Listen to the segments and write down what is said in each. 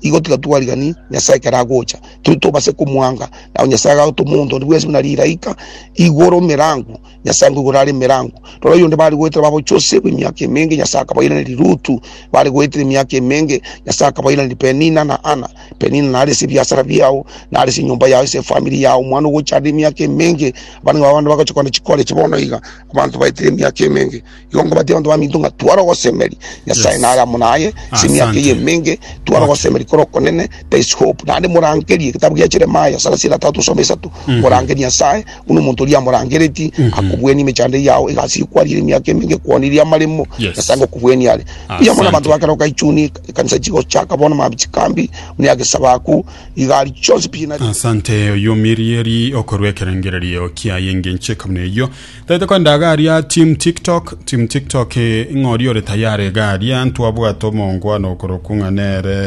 igo tiga twarigani Nyasae ekero agocha, tiri tobase komwanga. Nao Nyasae agagota omonto onde bwensi buna riraika igoro emerango, Nyasae nkoigoro are emerango. Rora oyonde bare goetera babo Jose bwe emiaka emenge, Nyasae akabairaneria Rutu, bare goetera emiaka emenge, Nyasae akabairaneria Penina na Ana. Penina nare ase ebiasara biao, nare ase enyomba yao, ase efamiri yao, omwana ogocha are emiaka emenge. Abanto babo bande bagocha kogenda chikore echi bono iga, abanto baetire emiaka emenge. Igo nkobatia abanto baminto ng'a tware ogosemeria Nyasae nare amo naye ase emiaka Asante. eye emenge, tware ogosemeria kore okonene, there is hope. Naende morangerie egetabu gia Jeremia thelathini na tatu some isato, morangerie Nyasae, buna omonto oria amorangereti, akobuenia emechando eyio yao, egasi eyio kwariire emiaka emenge, kwonirie amaremo, Yes. Nyasae ngokubuenie are. Mbuya mono Asante. abanto bakare goka ichuni, ekanisa chigochaka bono mambia chikambi, buna ya gesabaku, igari chionsi pi nari. Asante oyomirieri okorwa ekerengererio kiaye engencho ekabuna eyio Taete kogenda iga aria team tiktok team tiktok ng'a oria ore tayari iga aria ntwabwate omonkwano okorokwa ng'a nere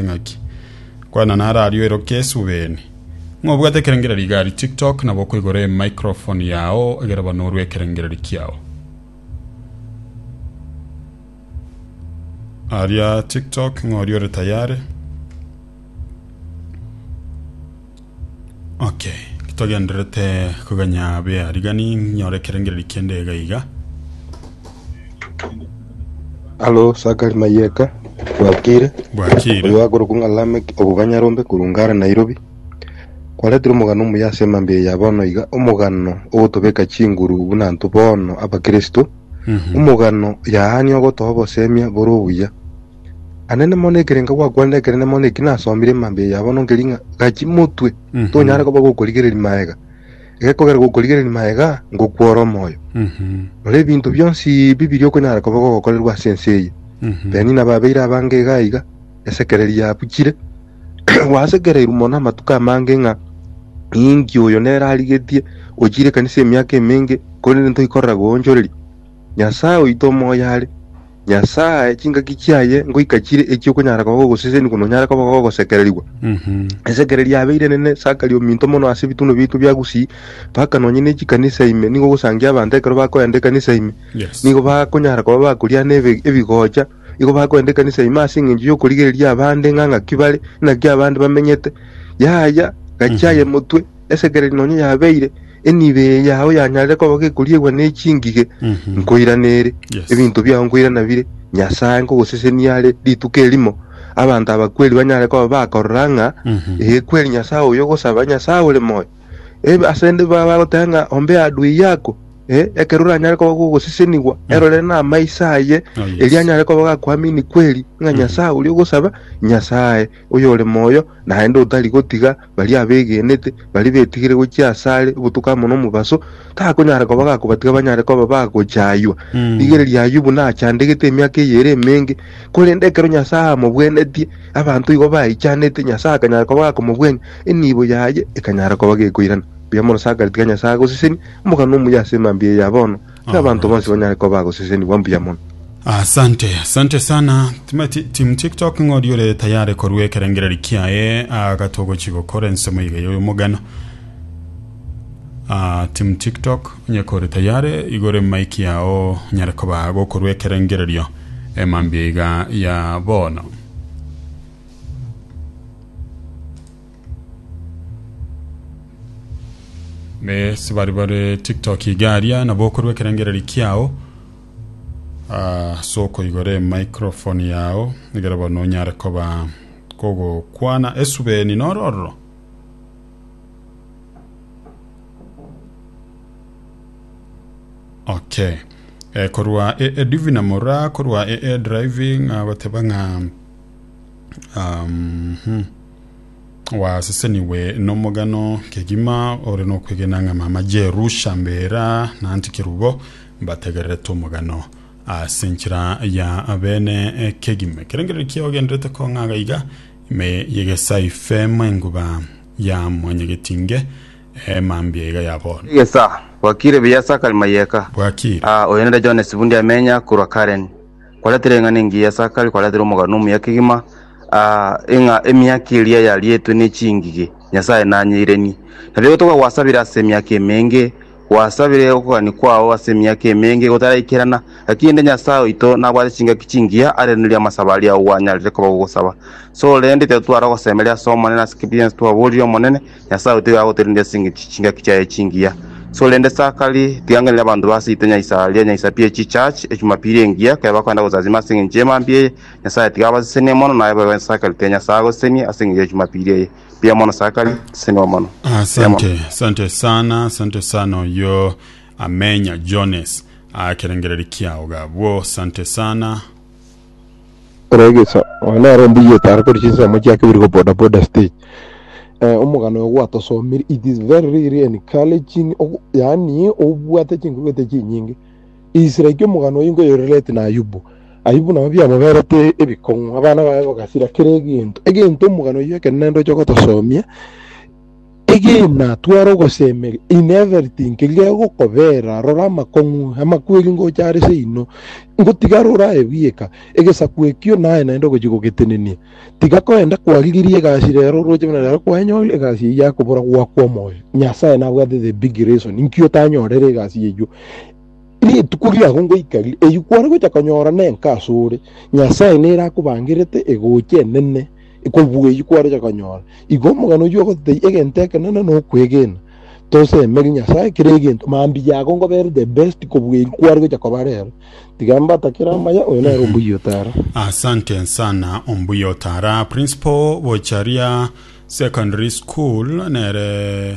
ng'aki kwana nare aria oiroke esubeni ng'a obwate ekerengereri iga aria tiktok nabo okoigora emicrophone yao egere banorwe ekerengereri kiao aria tiktok ng'a oria ore tayari Okay, togenderete koganya bea rigani nyore ekerengereri kende iga iga. Alo Sakari Mayeka Bwakire Bwakire. oyo agorokwa ng'a Lamek okoganya rombe korunga are Nairobi kwaretire omogano omuya ase emambia eye ya bono iga omogano ogotobeka chinguru buna intwe bono abakristo Mhm. omogano yaani ogotoa obosemia bore obuya Anene mono nekerenga gwakwanire ekenene mono eki nasomire emambia yabo nonkeri ng'a gachi motwe Mhm. tonyare koba gokorigereria maega egekogera gokorigereria maega ngokwora omoyo Mhm. nore ebinto bionsi ebi biri okonyara koba gogokorerwa ase ense eye Mhm. Beni nababeire abange iga iga esekereri yabuchire gwasekereirwe mono amatuko amange ng'a ninki oyo nere arigetie ochire ekanisa emiaka emenge korende ntoikorera goonchoreria Nyasae oito omoyo are Nyasae chingaki chiaye ngoika chire echi'okonyara koba ogoseseni kono nyare koba gogosekererigwa. Esekererio yabeire enene Sakari ominto mono ase ebituno biaito bia Gusii, mpaka nonye ne chikanisa ime nigo ogosangia abanto ekero bakoenda ekanisa ime. Nigo bakonyara koba bakoriana ebe- ebigocha, igo bakoenda ekanisa ime ase engencho y'okorigereria abande ng'a ng'aki bare, naki abande bamenyete. Yaya, gachia aye motwe, esekererio nonye yabeire, Enibo eye yao yanyarire koba gekoriegwa ne chingige, Mhm. nkoiranere. Yes. Ebinto biao nkoirana bire Nyasae, nkogosesenia are rituko erimo. Abanto abakweri banyare koba bakorora ng'a Mhm. ee, kweri Nyasae oyo ogosaba, Nyasae ore moyo. Ee, ase nde baba bagoteba ng'a ombe adui yako. Ee, ekero oranyare koba gogosesenigwa, erorere namaiso aye, Oh, yes. erio anyare koba gakoamini kweri ng'a Mhm. Nyasae oria ogosaba, Nyasae Oyore moyo naende otari gotiga baria abegenete, baria betigire gochia asare obotuko amo nomobaso, takonyara koba gakobatiga banyare koba bagochaywa. Rigereria Ayubu nachandegete emiaka eye ere emenge, korende ekero Nyasae amobwenetie, abanto igo baichanete, Nyasae akanyara koba gakomobwenia, enibo yaye ekanyara koba gekoirana. Mbuya mono Sakari, tiga Nyasae agosesenie, omogano omuya ase emambia eye ya bono. Ng'a abanto bonsi banyare koba agosesenigwa mbuya mono. Asante, asante sana. Tima- ti- Team TikTok ng'ori ore tayare korua ekerengereri kiaye agatogochi gokora ensemo iga yoyo mogano. Ah, Team TikTok onye kore tayare igore mic yao nyare koba gokorua ekerengererio emambia iga ya bono. Yes, bari bare TikTok igaria na bokorwa ekerengereri kiao ah, so koigore microphone yao egere bono onyare koba kogokwana esubeni nororo okay eh, korwa e, e divina mora korwa e, e driving ah, goteba ng'a um, hmm. Gwasesenigwe nomogano kegima ore nokwegena ng'a mama Jeru Shambera na Anti Kerubo mbategererete omogano ase enchera ya abene kegima. Ekerengererio kiao genderete kong'aga iga ime yegesae ifemo enguba ya mwanyagetinge emambia iga yabonwa. Egesaa, Bwakire buya Sakari Mayeka. Bwakire. Aa, oyo nere John Sibundi amenya korwa Karen. Kwaratire eng'ana engiya ya Sakari, kwaratire omogano omuya kegima, aa, ng'a emiaka eria yarietwe ne chingige, Nyasae nanyeirenie. Nabio gotoka gwasabire ase emiaka emenge, gwasabire okogania kwao ase emiaka emenge gotaraikerana, gaki inde Nyasae oito nabwate chingaki chingiya arenerie amasabo aria gwanyareire koba gogosaba. Sorende, titotwara ogosemeria ase Omonene ase ekibiansu twaborire Omonene, Nyasae oyo tiga agotorindia ase engencho chingaki chiaye chingiya. So rende sakari, tigangenire abanto ba seito nyaisaria, nyaisapi ye chichurch, echumapiri engiya, ekero bakoenda gosasima ase engencho y'emambia eye, Nyasae tiga abasesenie mono, naye boigo ense sakari tiga Nyasae agosesenie ase engencho y'echumapiri eye. Mbuya mono sakari, seseniwa mono. Mbuya mono. Asante, asante sana, asante sana oyo amenya Jones akerengereri kiao gabwo, asante sana. Ore egeso oyo nere ombuyete are kore chinsemo chiake biri go boda boda stage eh, omogano oyo gwatosomire it is very really encouraging ogo- yaani obwate chinkuruete chinyinge is like omogano oyo nkoyorelete na ayubu ayubu nabo biamoberete ebikong'u abana baye bagasira kera egento egento omogano oyo ekero nende oche gotosomia Egena, tware ogosemeria in everything keria egokobera, rora amakong'u, amakweri ngocha are seino, ngotiga are oraye bweka, egesaku ekio naye naende ogochia gogetenenia. Tiga koenda kwarigirie egasi rero oroche buna rero kwenyorire egasi eyio akobora gwakwa omoyo. Nyasaye nabwate the big reason inki otanyorire egasi eyio. Rituko riago ngoika ri, eyio kware gocha konyora nenka asore. Nyasaye nere akobangerete egochi enene. Kobuga eyio kwaroche konyora, igo omogano oyio ogototebia egento ekenene na okwegena, Tosemeri Nyasae kera egento, mambia ago ngobere the best kobuga eyio kware gocha koba rero. Tiga mbatakere amaya, oyo nere ombuya otara. Asante sana ombuya otara. Principal Bocharia Secondary School nere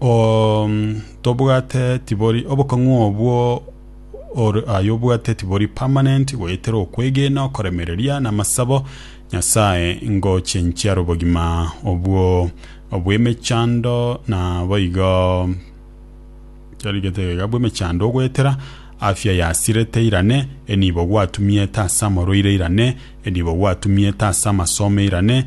Oo, tobwate tibori obokong'u obwo ore aye obwate tibori permanent goetera okwegena okoremereria na amasabo nyasaye ngoche nchiara obogima obwo obwemechando na boigo charigete iga bwemechando ogoetera afya yasirete irane enibo gwatumiete ase amorwaire irane enibo gwatumiete ase amasomo irane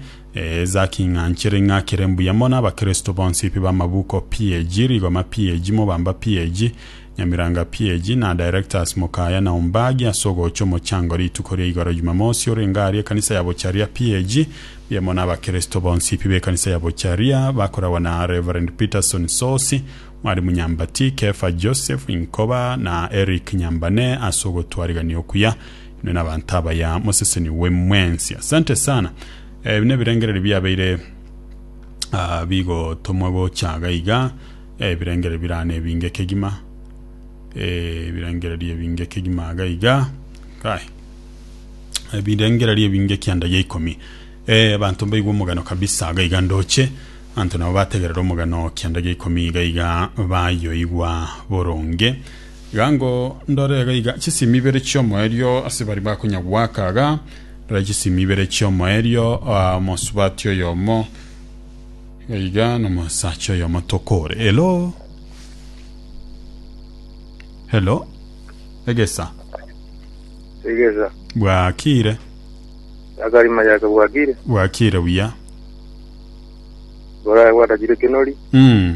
Zaki ng'anchere ng'akere mbuya mono abakristo bonsi pi b'amabuko PAG, Rigoma PAG, Mobamba PAG, Nyamiranga PAG, na Directors Mokaya na Ombagi ase ogocha omochango rituko ria igoro Jumamosi orenge aria ekanisa ya Bocharia PAG. Mbuya mono abakristo bonsi pi b'ekanisa ya Bocharia bakoragwa na Rev. Peterson Sosi, Mwalimu Nyambati, Kefa Joseph, Inkoba, na Eric Nyambane ase ogotwarigania okuya. Inwe nabanto abaya moseseni we mwensi. Asante sana. Ebi nebirengererio biabeire ah, bigotomwa gocha iga iga. Eh, ebirengererio birane ebinge kegima. Eh, ebirengererio ebinge kegima iga iga. Kai. Ebirengererio ebinge kianda ya ikomi. Eh, abanto mbaigwe omogano kabisa iga iga ndoche. Abanto nabo bategerera omogano kianda ya ikomi iga iga bayoigwa boronge. Iga ngo ndore iga iga chisimi ibere chiomoerio ase baria bakonyagwaka iga ndore chisimi ibere chiomoerio omosubati oyomo iga iga nomosacha oyomo tokore elo elo egesa egesa bwakire yakarima yake bwakire bwakire buya boraya gwatachire kenori mm.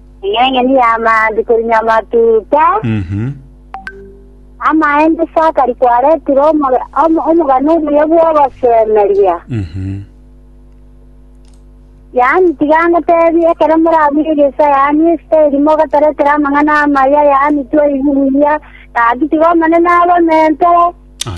Eng'eng'eni y'amaango korinywa amatuta. Mhm. Amaemba ase akari kwaretire omoga- omo- omogano omuya bw'ogosemeria. Mhm. Yaani tiga ngoteebie, ekero morabuge egeisa yaani esita eri mogataretera amang'ana amaya yaani twaigwa buya, gaki tiga Omonene abamentore.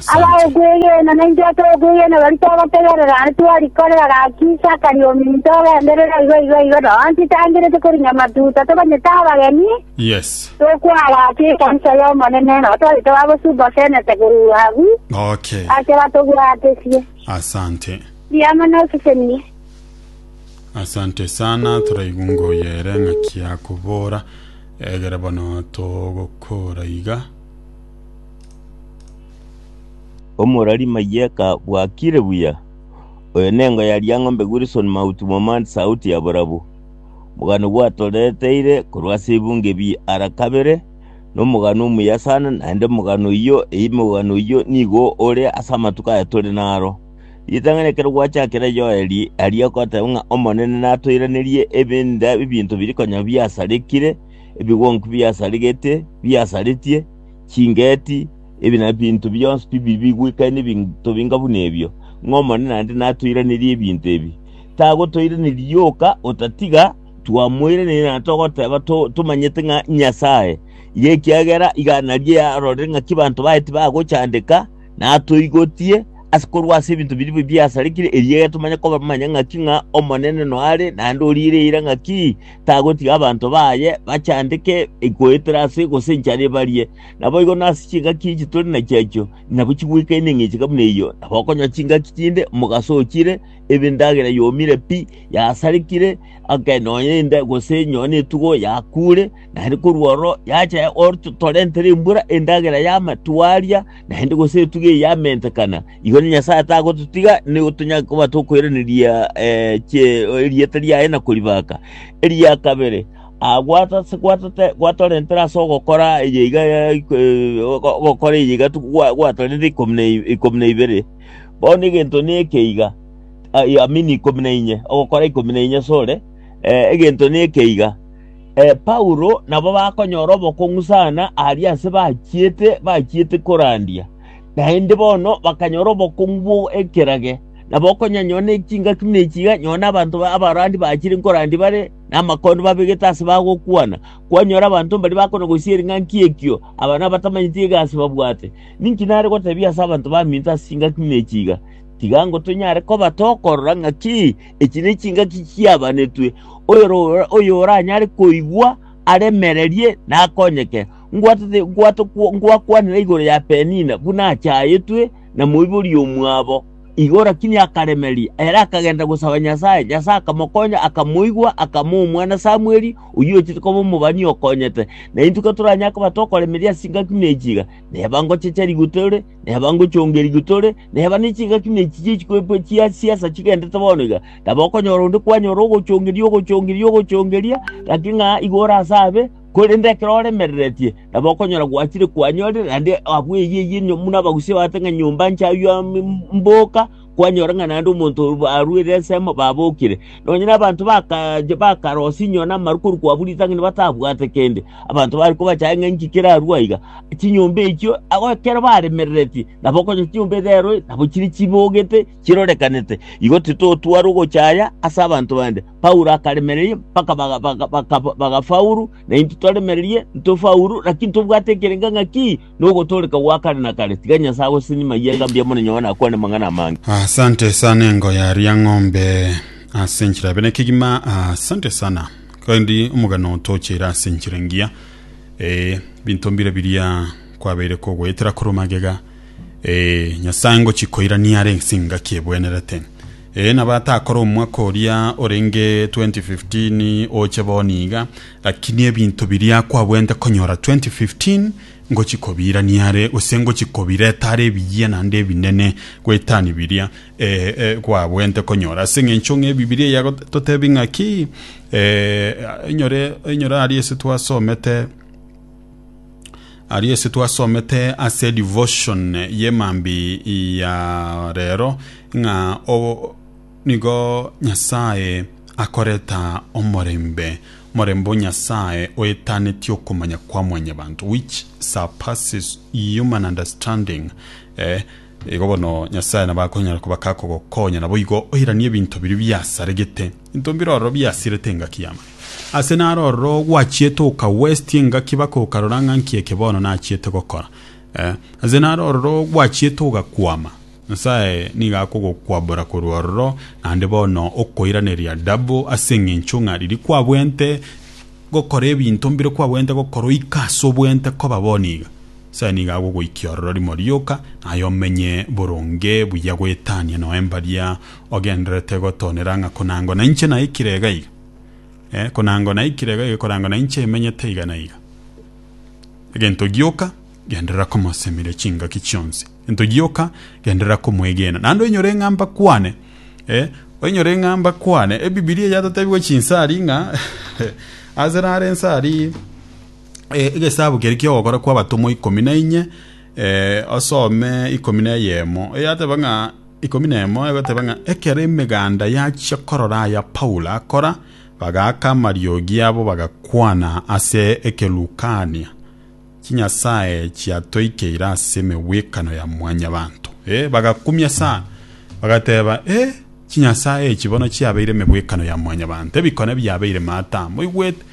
Agao okwegena, na intwe tokwegena, baria twagotegerera aye twarikorera gaki Isaka riominto ogenderere aiga aiga aiga nonya titangerete korinya matuta tokonyete abageni Yes. tokwara ase ekanisa y'Omonene nabo twari tobagosubosenete korwa agwo Okay. ase batobwatesie Asante. riamo nosesenie Asante sana toraigunga oyere ng'aki akobora egere bono togokora iga Omorari Mayieka bwakire buya. Oyo nengo ya Riang'ombe Wilson Mauti Momani Sauti ya Borabu. Omogano gwatoreteire korwa ase ebunge bi ara kabere, nomogano omuya sana, naende omogano oyio eyi omogano oyio nigo ore ase amatuko aya tore naro. Ritang'ani ekero gwachakire Yoeli aria goteba ng'a Omonene natoiranerie ebinda ebinto biri konya biasarekire, ebigonki biasarigete, biasaretie, chingeti, ebi nebinto bionsi bibibi goika nebinto binga buna ebio, ng'a Omonene naende natoiranerie ebinto ebi. Tagotoiraneria yoka otatiga twamoiraneria na togoteba to- tomanyete ng'a Nyasaye, iga ekiagera iga naria arorire ng'aki banto baye tibagochandeka, natoigotie ase korwa ase ebinto biria bibio biasarikire, erio egetomanya komanya ng'aki ng'a Omonene noare, naende oriire eira ng'aki tagotiga abanto baye bachandeke goetera ase gose enchara ebarie. Naboigo nase chingaki echi tore na chiachio, nabo chigwekaine eng'encheka buna eyio, nabo okonywa chingaki chinde omogaso ochire, ebe endagera yomire pi, yasarikire, ake nonya enda gose nonya etugo yakuure, Na ere korwa oro yacha gototorenta rimbura endagera y'amatwaria, naende gose etugi eye yamentekana, igo na Nyasae tagototiga nigo tonyare koba tokoiraneria eh, chie- erieta riaye na koribaka. Eria kabere, ah, gwata- ase gwatote- gwatorentera ase ogokora eye iga ya- eh, ogo- ogokora eye iga tu- gwa- gwatorentire ikomi na i- ikomi na ibere. Bono egento neke iga, ai- amini ikomi na inye, ogokora ikomi na inye sore, eh, egento neke iga, E, Paulo nabo bakonyora obokong'u sana aria ase bachiete bachiete korandia, naende bono bakanyora obokong'u bw'ekerage, nabo okonyanyora ne chingaki buna echi iga, nyowe na abanto ba- abarandi bachire nkorandia bare namakondo babegete ase bagokwana, kwanyora abanto mbaria bakonagosia ering'anki ekio, aba nabatamanyeti egasi babwate. Ninki nare gotebia ase abanto baminto ase chingaki buna echi iga? Tiga ngotonyare kobatokorora ng'aki Echi nechingaki chiabanetwe, oyoro- oyoranyare koigwa aremererie na akonyeke. Ngwatete ngwato kwo- ngwakwanire igoro ya Penina buna achayetwe na moibori omwabo. Igo rakini akaremeria, ere akagenda gosaba Nyasae, Nyasae akamokonya, akamoigwa, akama omwana Samweli, oyio ochete koba omobani okonyete. Na intwe katoranyare koba tokoremeria ase chingaki na echi iga, neba ngochecha rigutore, Neba ngochongerigwe tore, neba ne chingaki na echi chie chikoepo chia siasa chigendete bono iga, taba okonyora onde kwanyora ogochongeria, ogochongeria, ogochongeria, gaki ng'a igo ore ase abe, korende ekero oremereretie, taba okonyora gwachire kwanyorire, naende abwo eyio eyio buna abagusia bagoteba ng'a nyomba nchaywa mboka, kwanyora ng'a naende omonto oyo barwire ensemo babokire. Nonya nabanto bakache bakara osinyiwa namaru korwa kwabwo ritang'ani batabwate kende, abanto bare kobachaye ng'a inki kerarue aiga. Chinyomba echio ago ekero baremereretie nabo okonyora chinyomba edhero nabo chire chibogete chirorekanete. Igo titotwara ogochaya ase abanto bande. Paulo akaremereria mpaka baga baga baka bagafaulu, naintwe toremererie ntofaulu, lakini tobwate ekerenge ng'a ki? nogotooreka gwa kare na kare, tiga Nyasae agosesenye maiga mbuya mono nyuma nakwane amang'ana amange. Asante sana engo ya ria ng'ombe ase enchera bene kegima asante sana kandi omogano tochere ase enchera engiya eh, binto mbire biria kwabeire kogoetera korwa magega eh, nyasae ngochi koirania are ense engaki ebwenerete Ee, na batakore omwaka oria orenge 2015 oche bono iga, lakini ebinto biria kwabuente konyora 2015 ngochia kobirania are, gose ngochia kobireta are ebiyia naende ebinene goetani biria eh, eh, kwabuente konyora. Ase eng'encho ng'a Ebibilia yagototebia ng'a ki? Eh, inyore, inyore aria ase twasomete Aria ase twasomete ase devotion y'emambi ya rero ng'a o- nigo Nyasae akoreta omorembe morembe o Nyasae oetanetie okomanya kwa mwanyabanto which surpasses human understanding eh, igo bono Nyasae nabo akonyara koba kakogokonya naboigo oiranie ebinto biria biasaregete Into mbiroro biasirete engaki yamo. Ase naro ororo gwachiete oka westi engaki baka okarora ng'a nki eke bono nachiete gokora. Eh, ase naro ororo gwachiete ogakwama. Nyasae nigo akogokwabora korwa ororo naende bono okoiraneria double ase eng'encho ng'a riria kwabwente gokora ebinto mbire kwabwente gokora oika ase obwente koba bono iga. Nyasae nigo agogoikia ororo rimo rioka naye omenye boronge buya goetania noe mbaria ogendererete gotoonera ng'a konango nainche naikire iga iga, eh, konango naikire iga iga, konango nainche emenyete iga na iga. Egento gioka, genderera komosemeria chingaki chionsi. Egento gioka, genderera komwegena. Naende oinyore ng'a mbakwane, eh, oinyore ng'a mbakwane. Ebibilia yatotebiwa chinsari ng'a ase naro ensari eh, egesabu keria ki'ogokora kw'abatomwa ikomi na inye, eh, osome ikomi na eyemo. Eyateba ng'a. ikomi na emo egoteba ng'a ekero emeganda yachia korora aya Paulo akora, bagaaka amariogi abo bagakwana ase ekerukania, Chinyasae chiatoikeire ase emegwekano ya Mwanyabaanto. Ee, bagakumia sana, bagateba, Ee, chinyasae echi bono chiabeire emegwekano ya Mwanyabaanto, ebikone biabeire maata aa. Moigwete?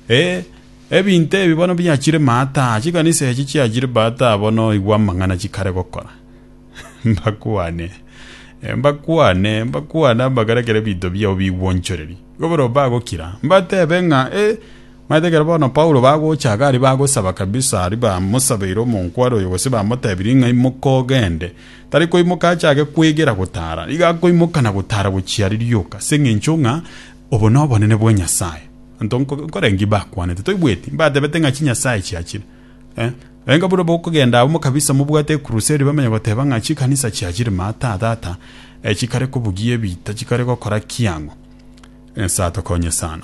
Ee, ebinto ebi bono biachire maata aa, chikanisa echi chiachire maata aa bono igwa amang'ana chikare gokora. mbakwane, mbakwane, mbakwane amagara ekero ebinto biao bigwonchoreria. Igo barabwo bagokira, mbatebe ng'a, Eh, omanyete ekero bono Paulo bagocha iga aria bagosaba kabisa, aria bamosabeire omonkware oyo gose bamotebirie ng'a imoka ogende, tari koimoka achake kwegera gotara, nigo akoimoka na gotara gochia aria rioka, ase eng'encho ng'a obo nobonene bwa Nyasae. Abanto nkoreng'ia mbakwanete, toigweti? Mbatebete ng'a chinyasae chiachire. Eh, enga buna bokogenda abwo mokabisa mobwate ekuruseri bamenye goteba ng'a chikanisa chia chire mata tata eh, chikare kobugia ebiita chikare gokora kiang'o. Nyasaye atokonye sana.